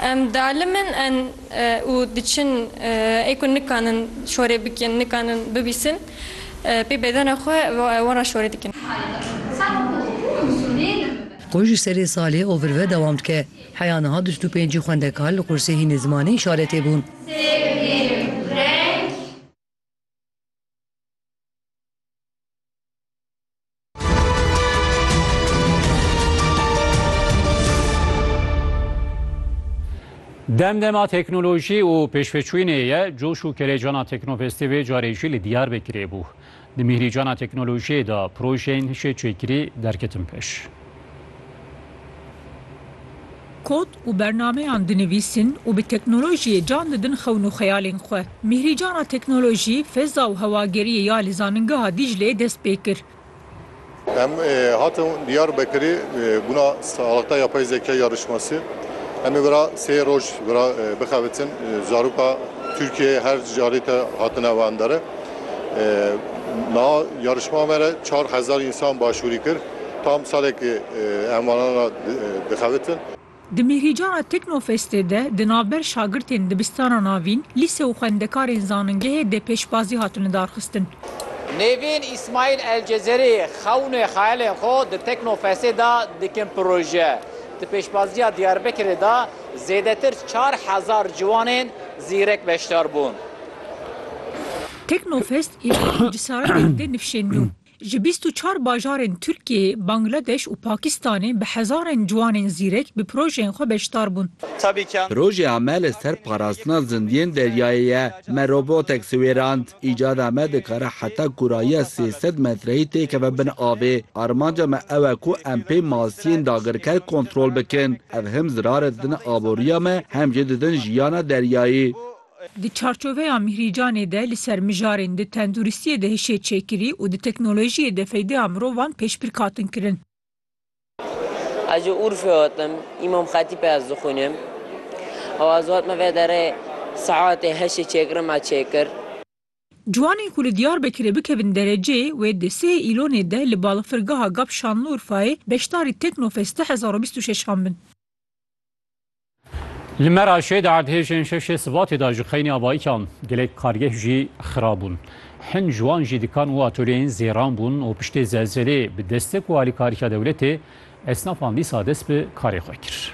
Em dialimin en û diçin ê ku nikanin şorê bikin, nikanin bibîsin pê bedena xwe wan re şorê dikin. Ku ji serê salê ovir ve dewam dike, heya niha du sed û pêncî xwendekar li qursê hînê zimanê îşaretê bûn. Dem dema teknolojî û pêşveçûnê ye, coş û kelêcana Teknofestê vê carê jî li Diyarbekirê bû. Di mîhrîcana teknolojiyê de projeyên hişê çêkirî derketin pêş. Kod, û bernameyan dinivîsin û bi teknolojiyê can didin xewn û xeyalên xwe. Mîhrîcana teknolojî, feza û hewageriyê ya li Zanîngeha Dîcleyê dest pê kir. Em hatin Diyarbekirê bûna salixta yapay zeka ya rişmasî. Em ê vera sê roj vera bixebitin zaroka Tirkiyeyê her carê te hatine wendere. Niha yarişma me re çar hezar însan başûrî kir. Tam salekî em wanan re dixebitin. Di Mîhrîcana Teknofestê de di navber şagirtên dibistana navîn, lîse û xwendekarên zanîngehê dê pêşbazî hatin lidarxistin. Nêvîn Îsmaîl Elcezerî xewnê xeyalên xwe di Teknofestê de dikin proje. Di pêşbaziya Diyarbekirê de zêdetir çar hezar ciwanên zîrek beşdar bûn. Teknofest êvaran û cesaretên dê nifşên nû. Ji bîst û çar bajarên Tirkiyeyê, Bangladeş û Pakistanê bi hezarên ciwanên zîrek bi projeyên xwe beşdar bûn. Projeya me li ser parastina zindiyên deryayê ye. Me robotek siwêrand. Îcada me dikare heta kurayiya sê sed metreyî têkeve bin avê. Armanca me ew e ku em pê masiyên dagirker kontrol bikin. Ev him zirar didin aboriya me hem jî didin jiyana deryayî. Di çarçoveya Mîhrîcanê de li ser mijarên di tenduristiyê de hişê çêkirî û di teknolojiyê de feydeya mirovan pêşbirk hatin kirin. Ez ji Urfê hatim, Îmam Xetîpê ez dixwînim û ez hatime vê derê saetê heştê çêkirin me çêkir. Ciwanên ku li Diyarbekirê bikevin derecê wê di sihê Îlonê de li balafirgeha gap Şanliurfayê beşdarî Teknofest du hezar û bîst û şeş an bin. Li Meraşê di erdhêjên şeşê Sibatê de ji xeynî avayikan gelek kargeh jî xirab bûn. Hin ji wan jî dikan û atölyeyên zêran bûn û piştê zelzelê bi destek û alîkariya dewletê esnafan dîsa dest bi karê xwe kir.